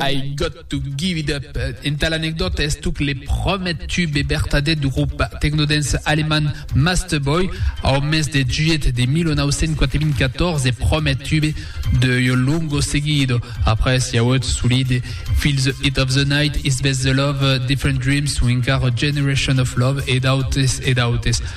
I got to give it up, entà l'anecdòta estuc le prumèr tube e vertadèr du grop tecno-dance alemand Masterboy, au mes de juilhet de 1994 e prumèr tube de Yo Lungo Seguido. Après i auèt solide Feel the Heat of the Night, It's Best the Love, Different Dreams o encara Generation of Love e d'autes e d'autes.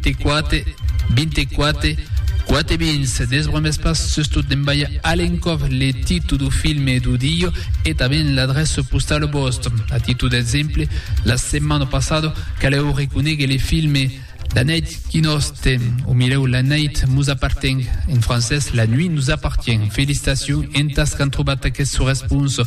Quate, vinte quate, quate vins, desbremes pas sustot d'envaiar a l'encòp le titu du filme e du diu e tanben l'adressa postala vòstra. A titu d'exemple, la setmana passada calèu reconéguer le filme La nèit qui nos tem, o milèu La nèit mos apparteng, en francés La nuit nous appartient. Felicitacions entas qu'an trobat aqueth sò responsa.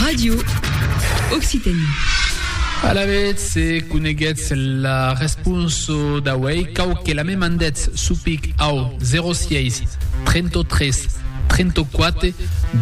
Radio Occitanie. Alavetz, se coneguètz la responsa d'auei, cau que la me mandètz sou pic au 06 33 34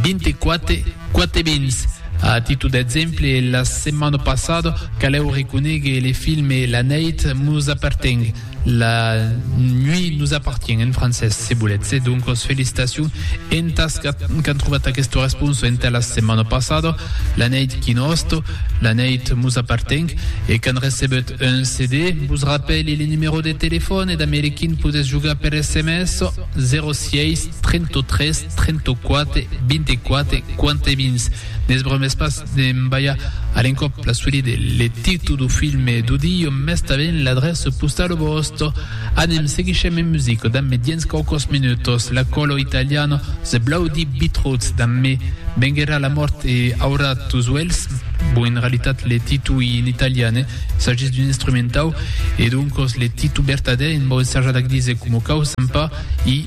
24 4 vins. A títol d'exemple, la setmana passada, calèu reconegue le filme La Nèit mos aperteng. La nuit nous appartient en francés, se voletz. E doncos felicitacion entas qu'an trovat aqueste responso entà la setmana passada, La neit qui nost, La neit mos apparteng, e qu'an recebut un CD. Vos rapèli le numero de telefòn e damb le quin podètz jogar per sms, 06 33 34 24 41. Ne's bromès pas de m'balhar a l'encòp la suite de le titu do filme do Dio, mès tanben l'adrèça postala vòsta. Anem, seguishem en musica damb dens quauquòs minutos la Colo Italiano, The Bloody Beetroots damb Me vengherà la mòrt e Aurà tos uelhs, bon en realitat le titu ei en italian, eh? s'agís d'un instrumentau e doncos le titu vertadèr en vau ensajar d'ac díser coma cau, s'en pas, ei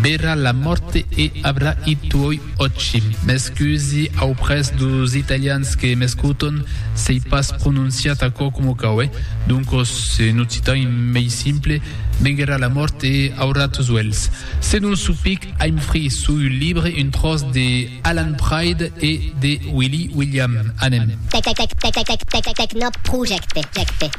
Verrà la mòrte e avrà i tuoi Òci, m'excusi auprès dos italians que m'escoton s'ei pas prononciat aquò coma cau, eh? Doncos, en occitan mei simple, venguerà la mòrt e aurà tos uèlhs. Se non sou pic, I'm free, sou un libre, un tròç de Alan Pride e de Willy William. Anem. Tecnoprojecte.